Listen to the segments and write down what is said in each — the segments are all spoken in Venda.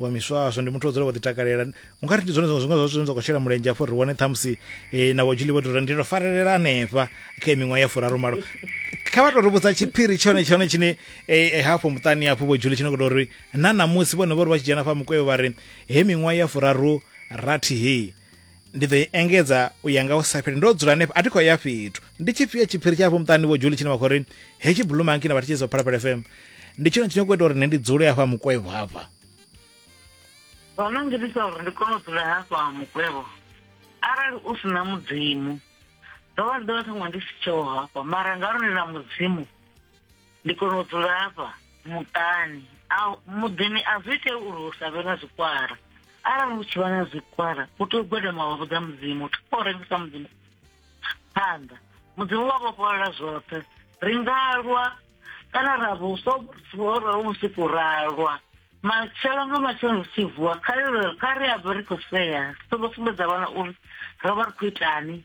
wa miswaswo ndi muthu o dzula vho ḓi takalela unga ri ndi zwone zwiṅwe zwiṅwe zwine zwa khou shela mulenzhe afho ri wane ṱhamusi eh, na vhojuli vho tori ndi to farelela hanefha kha miṅwaha ya furaru malo kha vha to ri vhudza tshiphiri tshone tshone tshine eh, eh, hafho muṱani hafho vhojuli tshine khou tou ri na ṋamusi vhone vho ri vha tshi dzhena fha mukweo vha ri he miṅwaha ya furaru rathi hei ndi ḓo i engedza u ya nga u sa fheli ndo dzula hanefho a thi khou ya fhethu ndi tshifhio tshiphiri tshafho muṱani vho juli tshine vha khou ri hetshi bulumanki na vha thetshelesa phalaphala fm ndi tshone tshine khou ita uri nṋe ndi dzule hafha mukwevho hafha zwo no ngitisa uri ndi kone u dzula hafha mukwevho arali u si na mudzimu ndo vha ndi ḓo vha ṱhaṅwe ndi si tsheho hafha mara ngauri ndi na mudzimu ndi kona u dzula hafha muṱani a muḓini a zwi ite uri hu sa vhe na zwikwara arali hu tshi vha na zwikwara u tea u gwadama wa vhudza mudzimu thi khou rengisa mudzimu phanḓa mudzimu wa vhofholola zwoṱhe ri nga lwa kana ra vho so ra vhusiku ra lwa matshelo nga matshelo ri tshi vuwa kha ri a vha ri khou sea so vho sumbedza vhana uri ro vha ri khou itani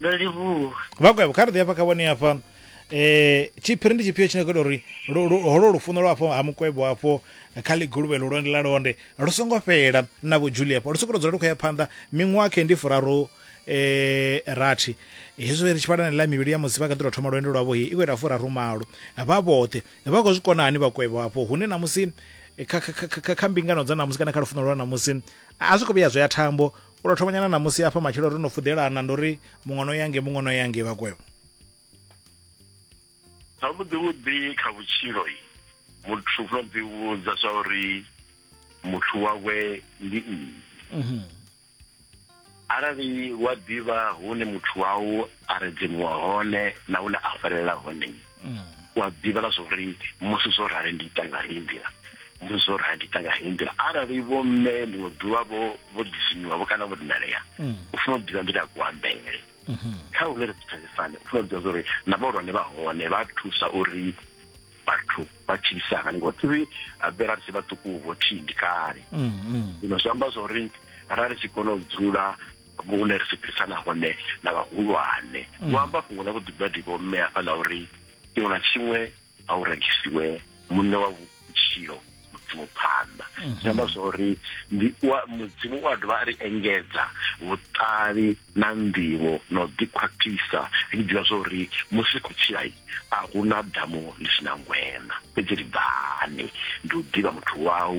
ndo livhuwa vakwevho kha ri ḓi hafha kha vhone hafha eh tshiphiri ndi tshifhio tshine kho ita uri lu- lu- holo lufuno lwa afho ha mukwevho afho kha ḽiguluvhe lu londe la londe lu songo fhela na vho julia afho lu sokou tou dzula lu khou ya phanḓa miṅwaha khe ndi furaru eh rathi hezwo ri tshi vhala na ḽa mivhili ya musi vha kha ḓi tou thoma lwendo lwavho he i khou ita furaru malo vha vhoṱhe vha khou zwi kona hani vhakwevho afho hune na musi kha, kha, kha, kha, kha mbingano dza namusi kana kha lufuno lwa namusi a zwi khou vhuya zwi ya thambo u to thoma nyana namusi hafha matshelo ri no fudelana ndo ri muṅwe no yange muṅwe no yange vhakwevho zwavhuḓi vhuḓi kha vhutshilo muthu u funa ḓi vhudza zwa uri muthu wawe ndi nnyi mhm. arali wa ḓivha hune muthu wau a redzimiwa hone na hune a farelela hone mm. wa ḓivhela zwo ri musi zwo rali ndi ita nga heyi nḓila musi zwo rali ndi ita nga heyi nḓila arali vho mme ḽiṅwe ḓuvha vho vho disinywa vho kana vho dinalea mm. u funa u ḓivha nḓila ya kuambele mm-hmm. kha hune ri thetshelesane u funa u ḓivha zwa uri na vhahulwane vha hone vha thusa uri vhathu vha tshilisana ngo tsivi abela ri si vhaṱuku vho thindi kale mm, mm. zwino zwi amba zwa uri ra ri tshi kona u dzula Hune ri swiṱisana hone na vhahulwane. Vho amba fhungo ḽa vhuḓibadivha ho mmea hafha ḽa uri, Tshiṅwe na tshiṅwe a hu rengisiwe, Muṋe wa vhutshilo Mudzimu phanḓa. Zwi amba zwa uri ndi wa Mudzimu u a dovha a ri engedza vhuṱali na nḓivho na u ḓikhwaṱhisa ri tshi ḓivha zwa uri musi ri khou tshila a hu na damu ḽi si na ngweṋa, fhedzi ri bvani ndi u ḓivha Muthu wau.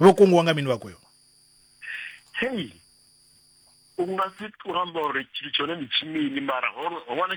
vho kungiwa nga mini vhakweo hei u nga si u amba uri tshithu tshone ndi tshimini mara ho wana